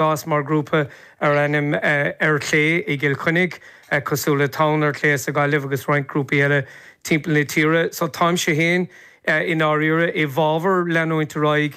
D'fhás mar grúpa ar ainm Ar Chlé i gCill Chainnigh, cosúil le Tonn ar Clé sa Ghaillimh agus roinnt grúpaí eile timpeall na tíre. So táimse féin i ndáiríre i bhfábhar leanúint ar aghaidh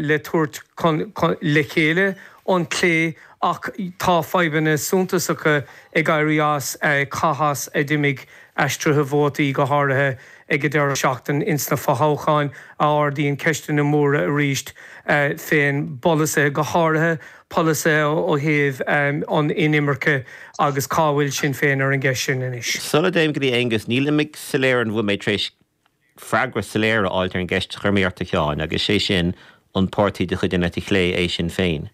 le tabhairt le chéile an clé ach tá fadhbanna suntasacha ag éirí as conas a d'imigh aistrithe vótaí, go háirithe ag an deireadh seachtaine ins na fothoghcháin, a ardaíonn ceisteanna móra arís fé na polasaithe, go háirithe polasaithe ó thaobh an inimirce agus cá bhfuil Sinn Féin ar an gceist sin anois. Sula dtéim go dtí Aonghus, níl mé soiléir an bhfuil mé tar éis freagra soiléir a fháilt ar an gceist a chuir mé ort a Sheáin, agus sé sin, an páirtí de chuid an eite chlé é Sinn Féin?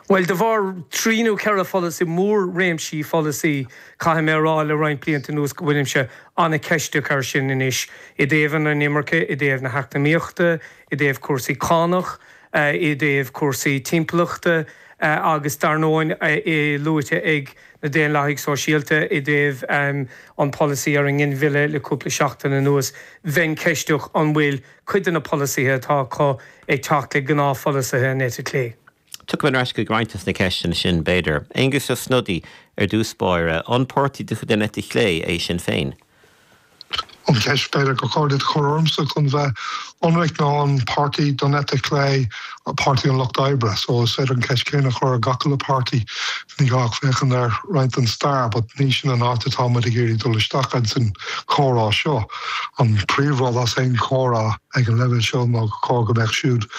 Bhuel, de bharr trí nó ceithre pholasaí, mór-réimsí pholasaí, caithfidh mé a rá, le roinnt blianta anuas go bhfuilimse an-cheisteach ar sin anois, i dtaobh an inimirce, i dtaobh na heacnamaíochta, i dtaobh cúrsaí cánach, i dtaobh cúrsaí timpeallachta agus dar ndóigh é luaite ag na Daonlathaigh Shóisialta i dtaobh an pholasaí ar an nginmhilleadh le cúpla seachtain anuas, bheinn ceisteach an bhfuil cuid de na polasaithe atá acu ag teacht le gnáthpholasaithe an eite chlé. Tiocfaidh mé ar ais chuig roinnt de na ceisteanna sin, b'fhéidir. Aengus Ó Snodaigh, ar dtús báire, an páirtí de chuid an eite chlé é Sinn Féin? An cheist b'fhéidir gur chóir duit a chur ormsa chun bheith ionraic ná an páirtí den eite chlé, Páirtí an Lucht Oibre? So is féidir an cheist chéanna a chur ar gach uile páirtí. Ní gá ach féachaint ar roinnt den stair but ní sin an áit atá muid ag iarraidh dul isteach ins an chomhrá seo. An príomh rud as aon chomhrá ag an leibhéal seo ná gur chóir go mbeadh siúd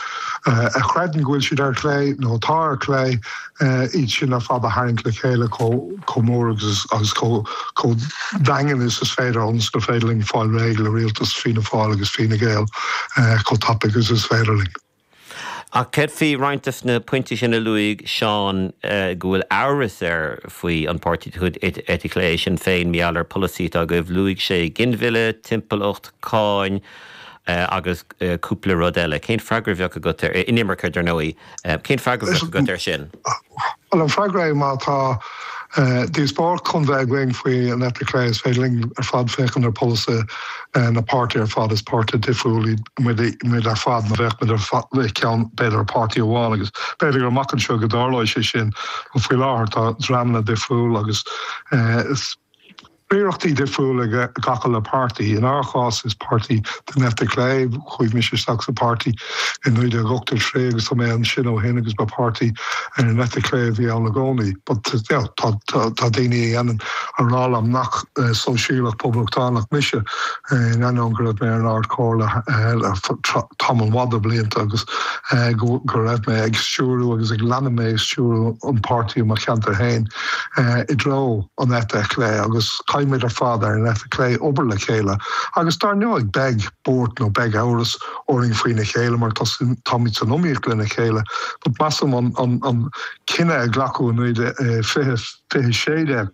a chreideann go bhfuil siad ar chlé nó atá ar chlé, iad sin ar fad a tharraingt le chéile chomh mór agus chomh daingean is is féidir ionas gur féidir linn fáil réidh le rialtas Fianna Fáil agus Fine Gael chomh tapaidh is is féidir linn. Ach céard faoi roinnt de na pointí sin a luaigh Seán go bhfuil amhras air faoi, an páirtí de chuid an eite chlé Sinn Féin, mar gheall ar pholasaithe atá agaibh, luaigh sé ginmhilleadh, timpeallacht, cáin agus cúpla rud eile. Cén freagra a bheadh agat, an inimirce, dar ndóigh? Cén freagra a bheadh agat air sin? Bhuel, an freagra, má tá díospóireacht chun bheith againn faoi an eite chlé, is féidir linn ar fad féachaint ar pholasaithe na bpáirtithe ar fad, is páirtithe difriúla muid ar fad, nó bheadh muid i gceann, b'fhéidir, páirtí amháin, agus b'fhéidir gur amach anseo go dtarlóidh sé sin, ach faoi láthair tá dreamanna difriúla agus is. Riarachtaí difriúla ag gach uile páirtí. In ár gcás is páirtí den eite chlé. Chuaigh mise isteach sa pháirtí i 1983 agus tá mé ansin ó shin agus ba páirtí ar an eite chlé a bhí ann i gcónaí. But you know tá daoine a dhéanann a rá liom nach sóisialach poblachtánach mise. in ainneoin go raibh mé ar an Ard Chomhairle ar feadh tamall mhaith de bhlianta agus go raibh mé ag stiúriú agus go leanfaidh mé ag stiúriú an páirtí i mo cheantar fhéin i dtreo an eite chlé agus caithfidh muid ar fad ar an eite chlé obair le chéile agus dár ndóigh beidh buairt nó beidh amhras orainn faoina chéile mar táimid san iomaíocht lena chéile but measaim an cinneadh a ghlac muid i 2016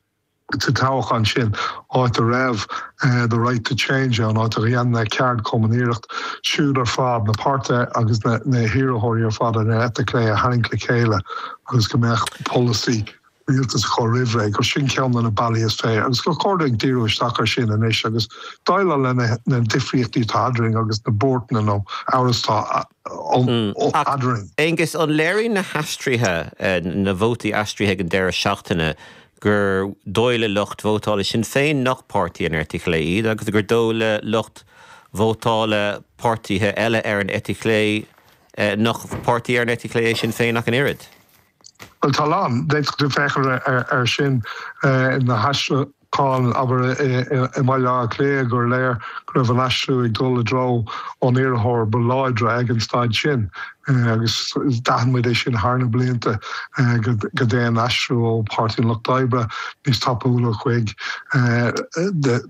sa toghchán sin, áit a raibh The Right to Change ann, áit a dhéan na ceardchumainn an iarracht iad siúd ar fad na páirtithe agus na hiarrthóirí ar fad ar an eite chlé a tharraingt le chéile agus go mbeadh polasaí rialtais acu roimhré, gur sin ceann de na bealaí is fearr agus gur chóir dúinn díriú isteach air sin anois agus déileáil le na difríochtaí atá eadrainn agus na buaireacanna nó amhras atá eadrainn. Ach, Aengus, an léiríonn na haistrithe, na vótaí aistrithe ag an deireadh seachtaine gur dóigh le lucht vótála Shinn Féin nach páirtí den eite chlé iad agus gur dóigh le lucht vótála páirtithe eile ar an eite chlé nach páirtí ar an eite chlé é Sinn Féin ach an oiread. Bhuel, tá a lán, d'fhéadfadh tú féachaint ar sin, na haistriúcháin, abair, i mBaile Átha Cliath, gur léir go raibh an aistriú ag dul i dtreo an iarrthóir ba láidre ag an staid sin. agus d'aithin muid é sin thar na blianta go dtéann aistriú ó Páirtí an Lucht Oibre níos tapúla chuig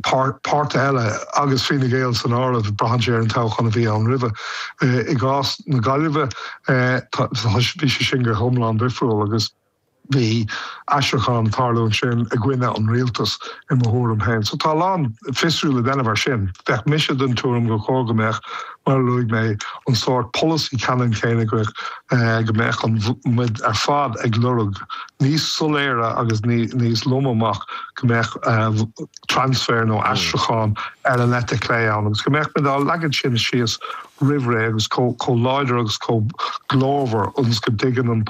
páirtithe eile, agus Fine Gael san áireamh, braitheann sé ar an toghchán a bhí ann roimhe. I gcás na Gaillimhe, bhí sé sin go hiomlán difriúil agus. Bhí aistriúchán ag tarlúint ansin i gcoinne an rialtas, i mo thuairim féin. So tá a lán fiosrú le déanamh ar sin. Bheadh mise den tuairim gur chóir go mbeadh, mar a luaigh mé, an sórt polasaí ceannann céanna go go mbeadh muid ar fad ag lorg níos soiléire agus níos lom amach go mbeadh transfer nó aistriúchán ar an eite chlé ann agus go mbeadh muid á leagan sin síos roimh ré agus chomh láidir agus chomh glórmhar ionas go dtuigeann an